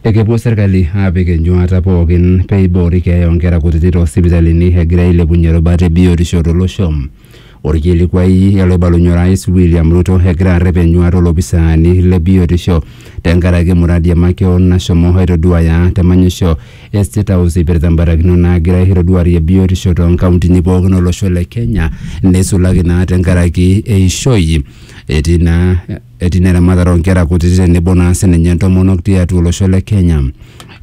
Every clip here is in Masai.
Ekepuo serkali aapik enyuata pookin pee eiboori keeya oonkera kutiti too sipitalini egira ailepunye rubat e biotisho to losho. Olkilikuai oloibalunye Orais William Ruto egira arrep enyuata olopisaani le biotisho tenkaraki muradi e makeon nashomo aitoduaya te manyisho e State House eipirta mbarakinot naagira aitoduarie biotisho too nkauntini pookin o losho le Kenya neisulaki naa tenkaraki eishoi. Etii naa etii ina eramatare oo nkera kutiti tenebo naa sininye ntomonok tiatua olosho le Kenya.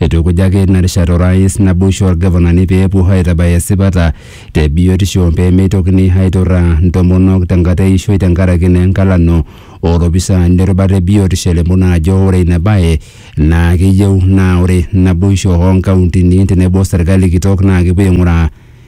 Eitukujaki ina rishata Orais naboisho oo Lgavanani pee epuo aaitabaya esipata te biotisho pee meitokini aaiturraa ntomonok tenkata e ishoi tenkaraki naa enkalano oo lopisaani le rubata e biotisho elimu naa ajo ore ina bae naa keyieu naa ore naboisho oo nkauntini tenebo serkali kitok naa kepuo aing'uraa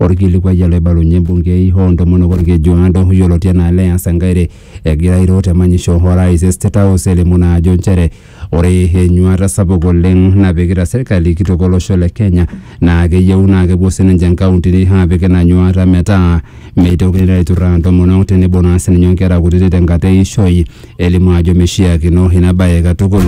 Olkilikuai ele oibalunye embungei oo ntomonok Olkejuado yioloti anaa Leah Sankaire egira airo te manyisho o rais e State House elimu naa ajo nchere ore enyuata sapuk oleng napikita serkali kitok olosho le Kenya naa keyieu naa kepuo sininche inkauntini aapik ina nyuata metaa meitokini naa aiturraa intomonok tenebo naa sininye o nkera kutiti tenkata eishoi elimu ajo meishiakino ina baye katukul.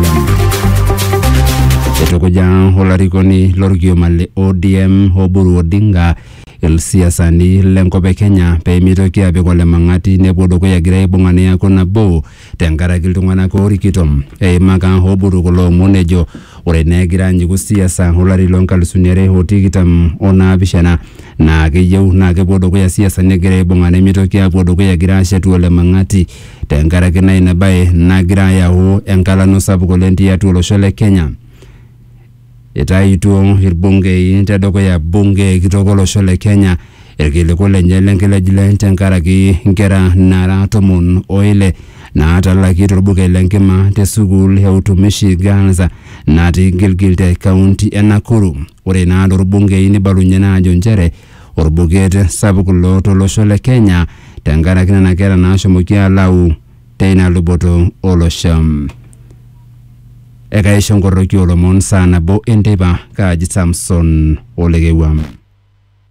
Eitukuja olarikoni lorkioma le ODM Oburu Odinga ilsiasani lenkop e Kenya pee meitoki apik olemang'ati nepuo dukuya egira aibung'a neaku nabo tenkaraki iltung'anak oorikito. Eimaka Oburu kulo omon ejo ore naa egira anyiku siasa olari loo nkalisuni are o tikitam o naapishana naa keyieu naa kepuo dukuya siasani egira aibung'a nemeitoki apuo dukuya egira aashetu olemang'ati. Tenkaraki naa ina bae nagira ayau enkalano sapuk oleng tiatua olosho le Kenya. Itaituo irbungei tedukuya bunge kitok olosho le Kenya irkiliku lenye lenkilejile tenkaraki nkera naara tomon o ile naatalaki torbuket le nkima te sukuul e Utumishi Girls natii Gilgil te kaunti e Nakuru. Ore naa torbungei nibalunye naa ajo nchere orbuket sapuk ilo tolosho le Kenya tenkaraki nena kera naashomoki alau teina luboto olosho. Ekaisho nkorroki oolomon saa nabo enteipa kaaji Samson Olekewua.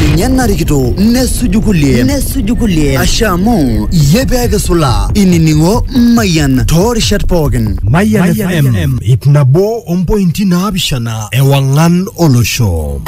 ninye narikito nesuju kulie nesuju kulie asha amu iyie pee kisulaa inining'o mayian toorishat pookin Mayian FM, ip nabo ompointi naapishana ewang'an olosho.